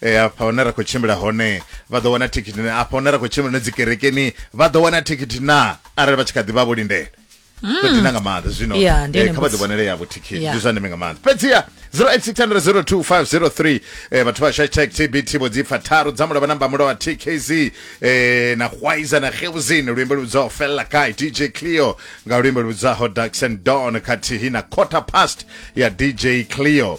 e, afha hune ra khou tshimbila hone vha ḓo wana thikhithi na afha hune ra khou tshimbila hone dzikerekeni vha ḓo wana thikhithi na arali vha tshi kha ḓi vha vho lindela to dina nga maanḓa zwino Hmm. Ya, ndi eh, yone kha vha ḓi mbudziso. vhonele yavho thikhithi Ya. ndi zwa ndeme nga maanḓa fhedziha 0860022503 eh, vhathu vha hashtag tbt vho dzi pfa tharu dza mulovha namba mulovha tkz eh, na hwaiza na geuzin luimbo lubzaho fella kai dj cleo nga luimbo lubzaho daxon don khathihi na quarter past ya dj cleo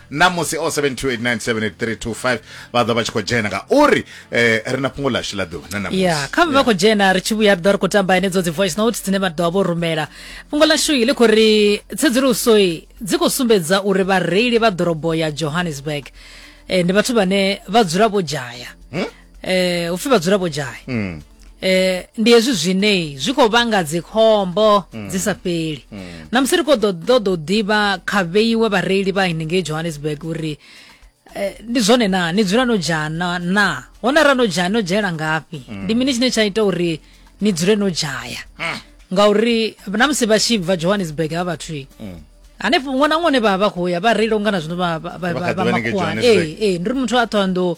ṋamusi 0728978325 vha ḓo vha tshi khou dzhena ngauri eh, ri na fhungo ḽashu ḽa ḓuvha na ṋamusi ya kha vha khou dzhena ri tshi vhuya ri ḓo ri khou tamba henedzo dzi voice note dzine vha ḓo vha vho rumela fhungo ḽashu i ḽi khou ri tsedzuluso i dzi khou sumbedza uri vhareili vha ḓorobo ya johannesburg eh, ndi vhathu vhane vha dzula vho dzhaya eh upfi vhadzulapo dzhai mm. eh ndi hezwi zwine zwi khou vhanga dzikhombo mm. dzi sa fheli mm. na musi ri khou ḓo ḓo ḓo ḓivha kha vheiwe vhareili vha henengei johannesburg uri eh, ndi zwone na ni dzula no dzhana na hone ra no dzhaya no dzhaela ngafhi mm. ndi mini tshine tsha ita uri ni dzule no dzhaya mm. ngauri na musi vha tshi bva johannesburg ha vhathu mm. hanefho ṅwana ṅwana vha vha khou ya vha reila ungana zwino vha vha vha makhuwa ee ee ndi ri muthu a ṱhoando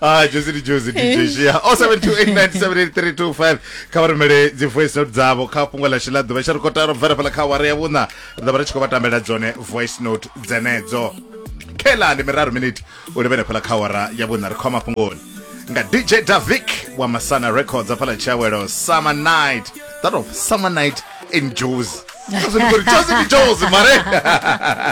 Ah, Josie ndi Josie DJ Shia. 0728978325 kha vha rumele dzi voice note dzavho kha fhungo ḽashu ḽa ḓuvha tsha ri kota ro bvela fhala kha awara ya vhuṋa ri ḓo vha ri tshi khou vha tambela dzone voice note dzenedzo khela ndi miraru miniti u livhele fhala kha awara ya vhuṋa ri khou ya mafhungoni nga dj davic wa masana records a fhala tshiawelo summer night that of summer night in jozi Jozi ndi Jozi, mare